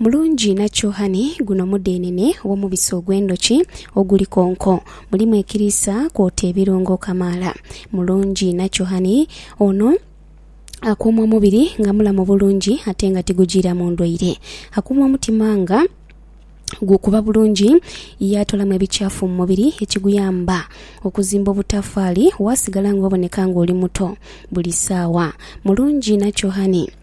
Mulungi inha kyohani guno mudhenene ow'omubisi ogw'endhoki oguli konko, mulimu ekiriisa kwota ebirungo kamaala. Mulungi inha kyohani ono akuuma omubiri nga mulamu bulungi ate nga tigujiiramu ndwaire. Akuuma omutima nga gukuba bulungi ye atoolamu ebikyafu mu mubiri ekiguyamba okuzimba obutafaali waasigala ng'oboneka ng'oli muto buli saawa. Mulungi inha kyohani.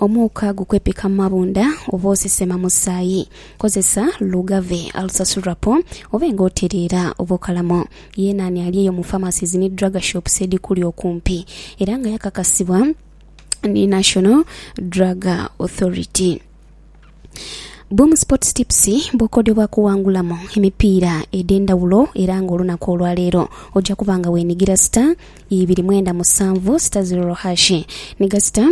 Omuuka gukwepika mu mabunda oba osesema musaayi. Kozesa Lugave, Alsasurappo obe nga otereera oba okalamo. Yeena ani ali eyo mu pharmacies ni drug shops edhikuli okumpi era nga yakakasibwa ni National Drug Authority. Boom Sports Tips bw'okodebwa kuwangulamu emipiira edh'endhawulo era ng'olunaku olwaleero oja kuba nga weenigira star ibiri mwenda musanvu star zero hashi niga star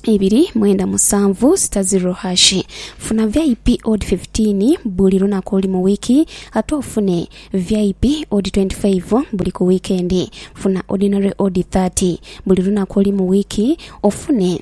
ibiri mwenda musanvu sita zero hashi funa vip od 15 buli lunaku oli mu wiiki ate ofune vip od 25 buli ku wiikendi funa ordinary od 30 buli lunaku oli mu wiiki ofune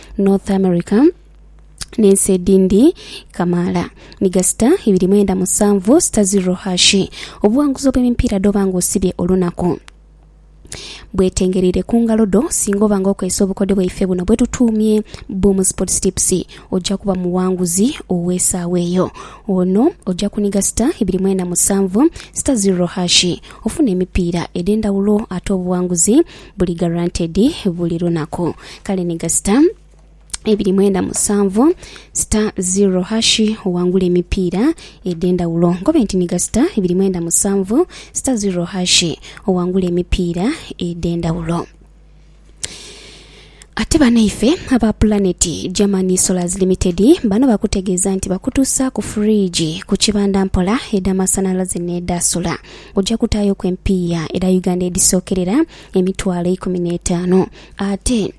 North America n'ensi edindi kamaala ni gasita ibiri mwenda musanvu sita ziro hashi. Obuwanguzi obw'emipiira dh'oba nga osibye olunaku bwetengereire ku ngalo dho. Singa oba nga okozesa obukodyo bwaife buno bwetutuumye Boom Sports Tips oja kuba muwanguzi ow'esaawa eyo. Ono oja kuniga sita ibiri mwenda musanvu sita ziro hashi ofune emipiira edhendhawulo ate obuwanguzi Buli guaranteed buli lunaku. Kale ni ga star ibiri mwenda musanvu star zero hash owangule emipiira edhendawulo. Nkobe nti ni ga star ibiri mwenda musanvu star zero hash owangule emipiira edhendawulo. Ate banaife aba Planet Germany Solars Limited bano bakutegeeza nti bakutuusaaku fridge ku kibanda mpola edha masanhalaze n'edha sola. Oja kutaayoku empiiya edha Uganda edhisookerera emitwalo eikumi n'etaanu ate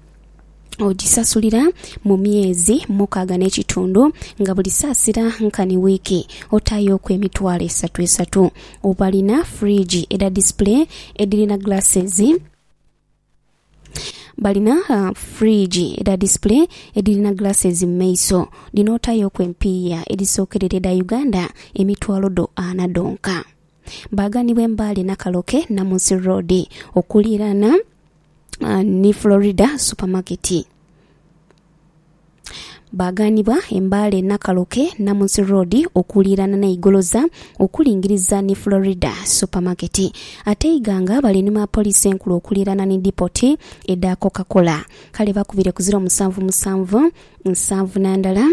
ogisasulira mu myezi mukaaga n'ekitundu nga buli saasira nkani wiiki otaayoku emitwalo esatu esatu. Balina fridge edha display edhirina glasses. Balina fridge edha display edhirina glasses mu maiso dhino otayoku empiiya edhisookerera edha Uganda emitwalo dho ana dhonka. Baaganibwa e Mbale, Nakaloke, Namunsi Road okuliiraana ni Florida Supermarket. Baagaanibwa e Mbale, Nakaloke, Namunsi Road okuliiraana ni Igoloza okulingiriza ni Florida Supermarket. Ate e Iganga balinuma Poliisi Enkulu okuliiraana ni Dipoti edha Coca Cola. Kale bakubire ku ziro musanvu musanvu nsanvu na ndala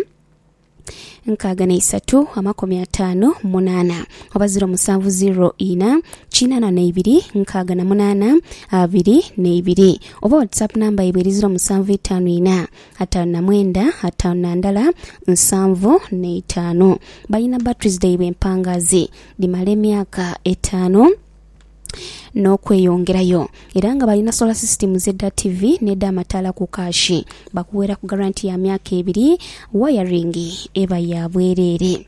nkaaga na isatu amakumi ataano munaana oba ziro musanvu ziro ina kinaana na ibiri nkaaga na munaana abiri na ibiri oba WhatsApp namba yaibwe eri ziro musanvu itaanu ina ataanu na mwenda, ataanu na ndala, nsanvu na itaanu. Balina batteries dhaibwe empangaazi dhimala emyaka etaanu n'okweyongerayo era nga balina solar systems edha ttivi n'edh'amataala ku kaashi. Bakuweeraku garanti ya myaka ebiri, wayaringi eba ya bwereere.